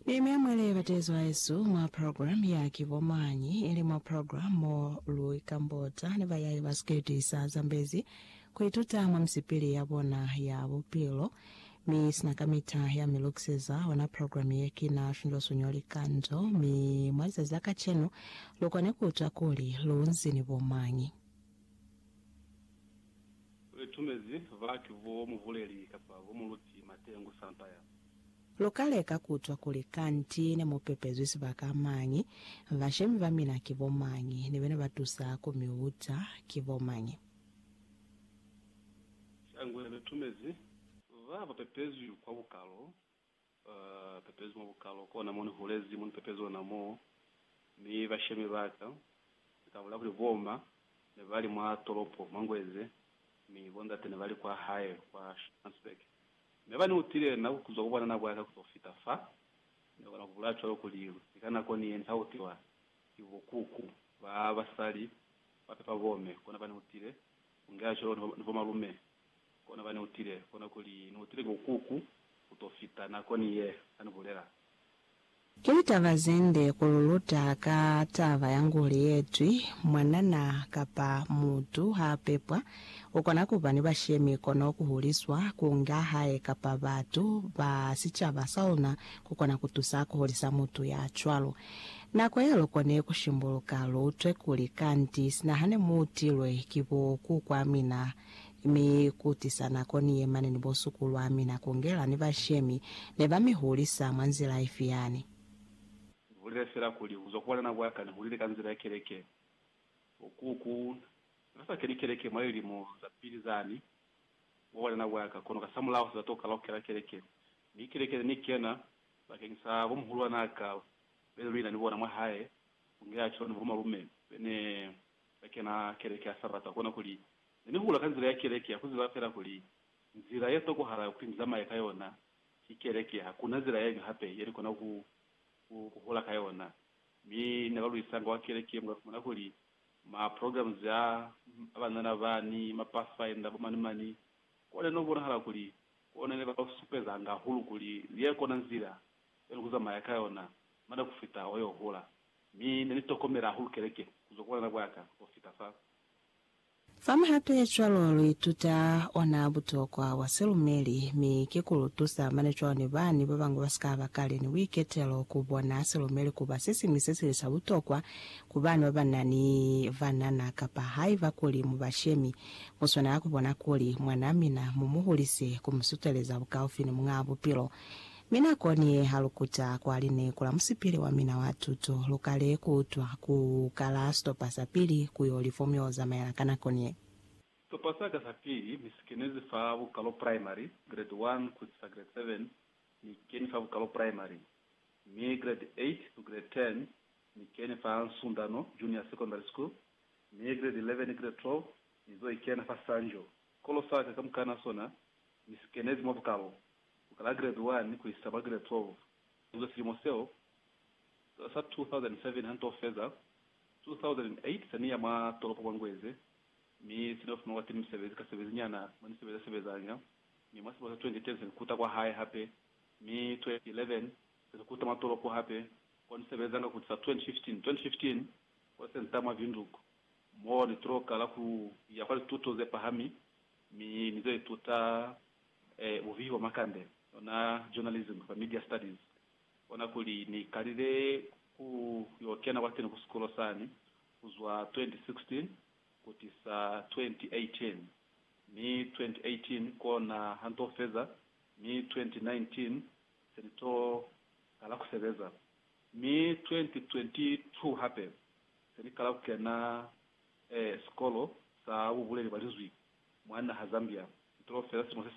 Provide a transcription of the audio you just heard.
Ni mea mwa libatezo haesu mwa program ya Ki Bo Mañi? ili mwa program mo lu ikambota ni bayai ba sikete sa zambezi ku ituta mwa misipili ya bona ya bupilo. Mi sina kamita ya mi lukiseza ona program ye kina Finlosuño Likando, mi mwa lizazi la kacenu lu kone ku utwa kuli lu nzi ni bo mañi. Li tumezi baki bo mubuleli kapa bo muluti matengu sampa ya. Luka leka kutwa kuli kanti ne mu pepezwi sibaka mañi, bashemi ba mina ki bo mañi, ni bena ba tusa ku mi uta ki bo mañi. Shangwe li tumezi ba ba pepezwi kwa bukalo pepezi mwa bukalo kona mo ni hulezi, mo ni pepezi ona moo, mi bashemi baka ni ka bulaya kuli boma ne ba li mwa tolopo mwa Ngweze, mi bo ndate ne ba li kwa hae kwa Schopmansberg. Mi haba ni utile na kuzwa ku bwanana bwaka kuzo fita fa, ni kona ku bulaya cwalo kuli ni ka nako ni ye ni ka utiwa ki bo kuku ba basali ba pepa bome, kona ba ni utile ku ngeha cwalo ni bo malume Kona ba neutile kona kuli neutile ki ukuku kuto fita nako ni ye ani bulela. Ki litaba zende ku lu luta ka taba ya nguli yetwi, mwanana kapa mutu ha pepwa, ukona kuba ni bashemi kono ku huliswa, kunga hae kapa batu ba sicaba sa luna kukona kutusa kuhulisa mutu ya cwalo. Nako ye lukone kushimbuluka, lu utwe kuli kanti sina hane muutilwe ki bo kukwa mina, Mi ku tisa nako ni yemane ni bo sukulwa mina ku ngela ni bashemi, ne ba mi hulisa mwa nzila ifi yani? Ni bulile fela kuli kuzwa ku banana bwa ka ni hulile ka nzila ya keleke. Oku ku Na sa keli keleke mwa lilimo za pili zani mwa bwanana bwa ka, kono kasamulaho sa tokala ku kela keleke. Mi keleke ne ni kena bakeng sa bo muhulwan'a ka bene luli na ni bona mwa hae, ku ngela cwalo ni bo malume bene Ka kena keleke ya Sabata, kona kuli, ne ni hula ka nzila ya keleke ya ku ziba fela kuli, nzila ye tokohala kuli ni zamaye ka yona ki keleke, hakuna zila yeñwi hape ye ni kona ku, ku, ku hula ka yona. Mi ne ba luisanga wa keleke, mu ka fumana kuli, ma programs a, a banana ba, ni ma pathfinder, bo mani mani, kwa ne no bonahala kuli, kona ne ba ka supezanga hahulu kuli, ye kona nzila ye ni ku zamaya ka yona, mane ku fita o yo hula. Mi ne ni tokomela hahulu keleke ku zwa ku bwanana bwa ka ho fita fa. Fa mihato ye cwalo lu ituta ona butokwa bwa silumeli, mi ki ku lu tusa mane cwalo ni bani ba bañwi ba si ka ba kale ni buiketelo ku bona silumeli ku ba se siñwi se sili sa butokwa ku bana ba ba na ni banana. Kapa haiba kuli mu bashemi, mu swanela ku bona kuli mwanaa mina mu mu hulise ku mu suteleza bukaufi ni Muñaa Bupilo. Mi nakoni ye ha lu kuta kwa lineku la musipili wa mina wa tuto, lu kale ku utwa ku kala sitopa sa pili ku yo li fomu yo zamaela ka nakoni ye. Sitopa sa ka sa pili ni si kenezi fa bukalo primary, grade 1 ku isisa grade 7, ni keni fa bukalo primary, mi grade 8 ku grade 10 ni keni fa Nsundano Junior Secondary School, mi grade 11 ni grade 12 ni zo ikena fa Sanjo. Sikolo sa ka kamukana sona ni si kenezi mwa bukalo. ku kala Giredi 1 ku isa kwa Giredi 12, inzwe silimo seo sa 2007 ha nto feza 2008 sa ni ya mwa tolopo mwa Ngweze mi se ni yo fumana kwateni misebezi ka sebezi nyana mwa ni sebeza sebezanga, mi mwa silimo sa 2010 sa ni kuta kwa hae hape, mi 2011 sa ni kuta mwa tolopo hape ko ni sebezanga ku tisa 2015, 2015 kwa Senta mwa Windhoek, mo ni tolo kala ku ya kwa lituto ze pahami mi ni zo ituta eh, buvihi bwa makande, ona journalism kamba media studies. Ona kuli ni kalile ku yo kena kwateni ku sikulo sani kuzwa 2016 kutisa 2018, mi 2018 kona ha nto feza, mi 2019 se ni to kala ku sebeza, mi 2022 hape se ni kala ku kena Ee, sikolo sa bubuleli bwa Linzwi mwa naha Zambia nto feela simo se